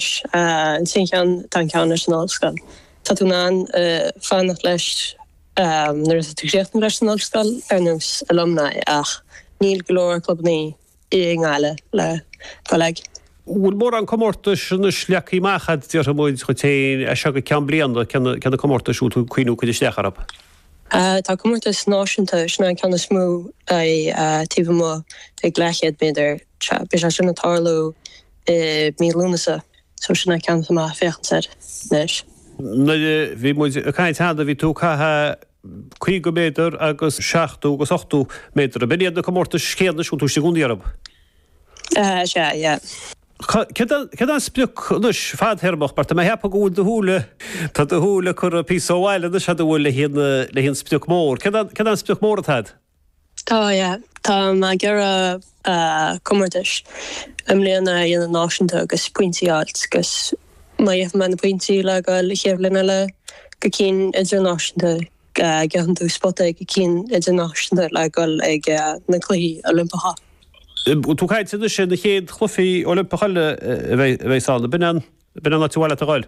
Sin ceann, tá an ceann leis an ollscoil. Tá tú in ann fanacht leis nuair atá tú críochnaithe leis an ollscoil, ar nós alumni, ach níl go leor clubannaí i nGaillimh le dul ag. Bhfuil mórán comórtais anois leagthaí amach a'd, déarfaidh muid dhuit fhéin, as seo go ceann bliana, cé na, cé na comórtais a bhfuil tú ag cuimhniú cur isteach orthu? Tá comórtas náisiúnta, sin é an ceann is mó, taobh amuigh ag leathchéad méadar, beidh sé sin ag tarlú i i mí Lúnasa so sin é an ceann atá mé a' féachaint air anois. nuair a bhí muid a' caint cheana bhí tú a' caitheamh caoga méadar agus seachtó agus ochtó méadar, a' b'in iad na comórtais chéanna anois atá tú istigh i gcónaí orthub? Eh is ea, yeah. Céard é, céard é an sprioc anois, fadthéarmach, mar tá mé a' ceapadh go bhfuil do shúil a, tá do shúil curtha píosa ó bhaile anois a'd, an bhfuil, le haghaidh an, le haghaidh an sprioc mór, céard é, céard é an sprioc mór atá a'd? Tá, yeah. Tá mé ag iarraidh comórtais i mbliana a dhéanamh náisiúnta agus pointí a fháilt agus má gheobhaidh mé na pointí le goil ag an chéad leibhéal eile go cinn idirnáisiúnta gheibheann tú spota ag cinn idirnáisiúnta le goil ag na cluichí Oilimpeacha. Tá tú ag caint anois ar na chéad chluichí Oilimpeacha eile a bheidh ann. B'in an áit ar mhaith leat a ghoil?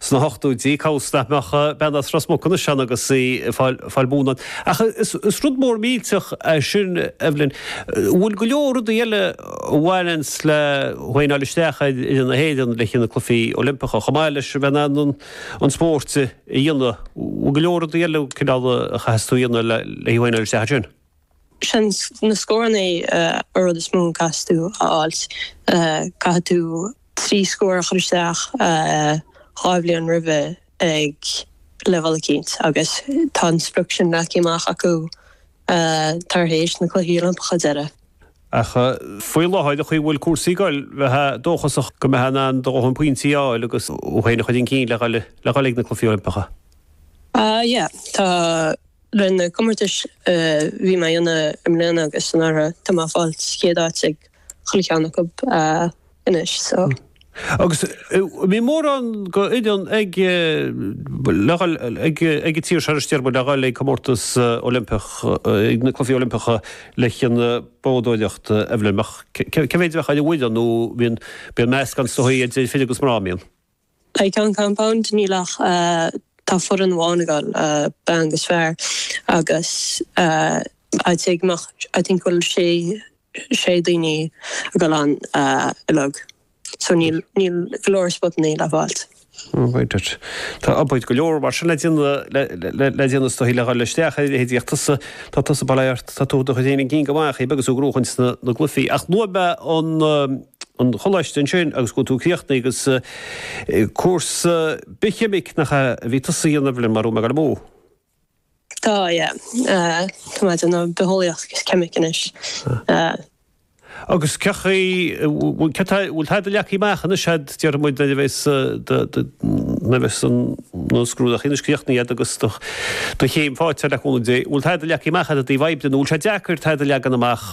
Sna hochtóidí, cá bhfios nach mbeidh bean as Ros Muc anois ann agus í ag fáil bonn óir. Ach is rud mór millteach é sin, Evelyn. An bhfuil go leor rudaí eile a bhaineanns le thú fhéin a fháil isteach ar fhoireann na hÉireann le haghaidh na Cluichí Oilimpeacha, chomh maith leis bheith in ann an spóirt a dhéanamh, an bhfuil go leor rudaí eile cineál a chaithfeas tú a dhéanamh le haghaidh thú fhéin a fháil isteach ansin? Seans na scóranna an rud is mó a gcaithfidh tú a fháilt. Caithfidh tú trí scór a chur isteach dhá bhliain roimhe ag leibheál eicínt agus tá an sprioc sin leagtha amach acu tar éis na Cluichí Oilimpeacha deiridh. Ach faoi láthair, an chaoi a bhfuil cúrsaí ag dul, bheitheá dóchasach go mbeitheá in ann do dhóthain pointí a fháil agus thú féin a chur chun cinn le dhul ag na Cluichí Oilimpeacha. Yeah, tá. Ar na comórtais a bhí mé a dhéanamh i mbliana agus anuraidh, tá mé ag fáil sa chéad áit ag chuile cheann acu anois, so. Agus mbíonn mórán d'fhoireann ag le ghabháil ag ag an tír seo anois déarfaidh muid le ghabháil ag comórtas Oilimpeach ag na cluichí Oilimpeacha le haghaidh na boghdóireacht Evelyn mar, cé mhéad a bheadh ann a bhfuil ann nó bíonn bíonn meascán is dóichí idir fir agus mná an mbíonn? I gceann compound níl ach tá foireann amháin again, bean agus fear agus I'd say go mbeadh I think bhfuil sé sé daoine again ann uilig so níl níl go leor spotannaí le fáilt. Right it. Tá obair go leor mar sin le déanamh le le déanamh is dóichí le dhul isteach ar a leithéid ach tusa tá tusa bail ort tá tú do do chur féin chun cinn go maith aige agus tú ag gnóthachan na gcluichí ach luaigh mé an choláiste ansin agus go bhfuil tú ag críochnú agus cúrsa bithcheimic nach ea a bhí tusa a dhéanamh mara bhfuil mé ag dul amú. Tá, yeah. Tá mé ag déanamh bitheolaíocht agus ceimic anois. Agus cén chaoi, bhfuil tada leagthaí amach anois a'd, déarfaidh muid, nuair a bheas nuair a bheas an na scrúdacha anois críochnaithe a'd agus do do chéim fáighte a'd le cúnamh Dé, bhfuil tada leagthaí amach a'd ó thaobh oibre de, nó bhfuil sé deacair tada a leagan amach?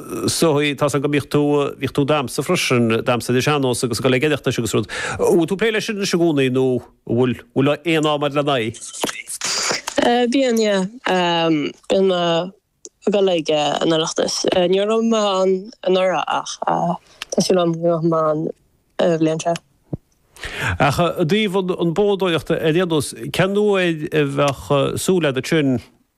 so tá a fhios agam go mbíodh tú, bhíodh tú ag damhsa freisin, damhsa ar an sean-nós agus ag dul ag an Oireachtas agus rud. An bhfuil tú ag plé leis sin anois i gcónaí nó an bhfuil, an bhfuil aon am a'd lena aghaidh? Bíonn, yeah. Bíonn mé ag dul ag an Oireachtas. Ní raibh mé ann anuraidh ach tá súil agam go ngabhfaidh mé ann an bhliain seo. Ach i dtaobh an bhádóireacht ar aon nós, cén uair a bheadh súil agat sin?